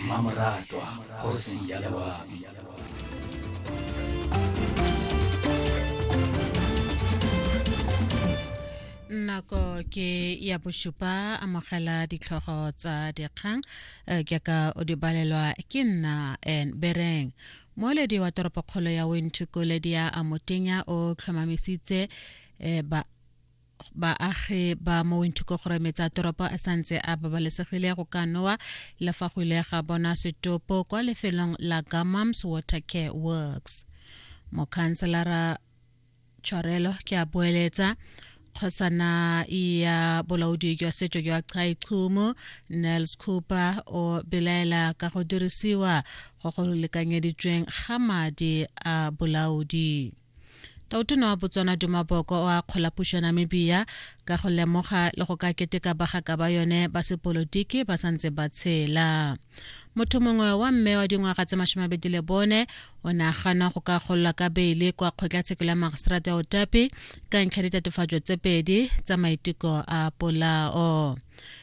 mmamoratwa kgosi ya lewami nako ke ya bosupa amogela ditlhogo tsa dikgang eh, ke ka o di balelwa ke nna en bereng moeledi wa toropokgolo ya wenthukoledi ya amotenya o tlhomamisitse eh, ba baagi ba mo winthukogorome tsa toropo a santse a babalesegile go ka nowa le fa go ile ga bona setopo kwa lefelong la gamams water care works mokhanselara tshwarelo ke a boeletsa kgosana ya bolaodi jwa setso jwa chai chumo nels cooper o belaela ka go dirisiwa go go lekanyeditsweng ga madi a bolaodi Tautona wa Botswana Duma Boko o akgola puso ya Namibia ka go lemoga le go ka keteka bagaka ba yone ba sepolotiki ba sa ntse ba tshela. Motho mongwe wa mme wa dingwaga tse masome a bedi le bone o ne a gana go ka gololwa ka beile kwa kgotlatshekelo ya magiseterata ya Otapi ka ntlha ditatofatso tse pedi tsa maiteko a polao.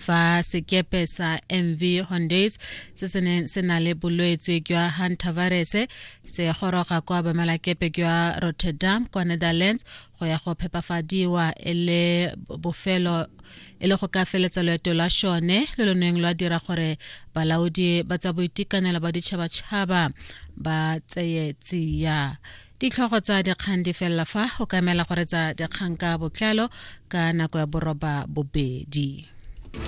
fa sekepe sa mv hondays se se neng se na le bolwetse jwa hantavirus se goroga kwa bamalakepe jwa rotterdam kwa netherlands go ya go phepafadiwa e le bofelo e le go ka feletsa loeto lwa shone le lo neng lwa dira gore balaodi ba tsa boitekanelo ba ditšhabatšhaba ba tseye tsia Ditlhogo tsa dikgang di felela fa o ka emela go retsa dikgang ka botlalo ka nako ya boroba bobedi.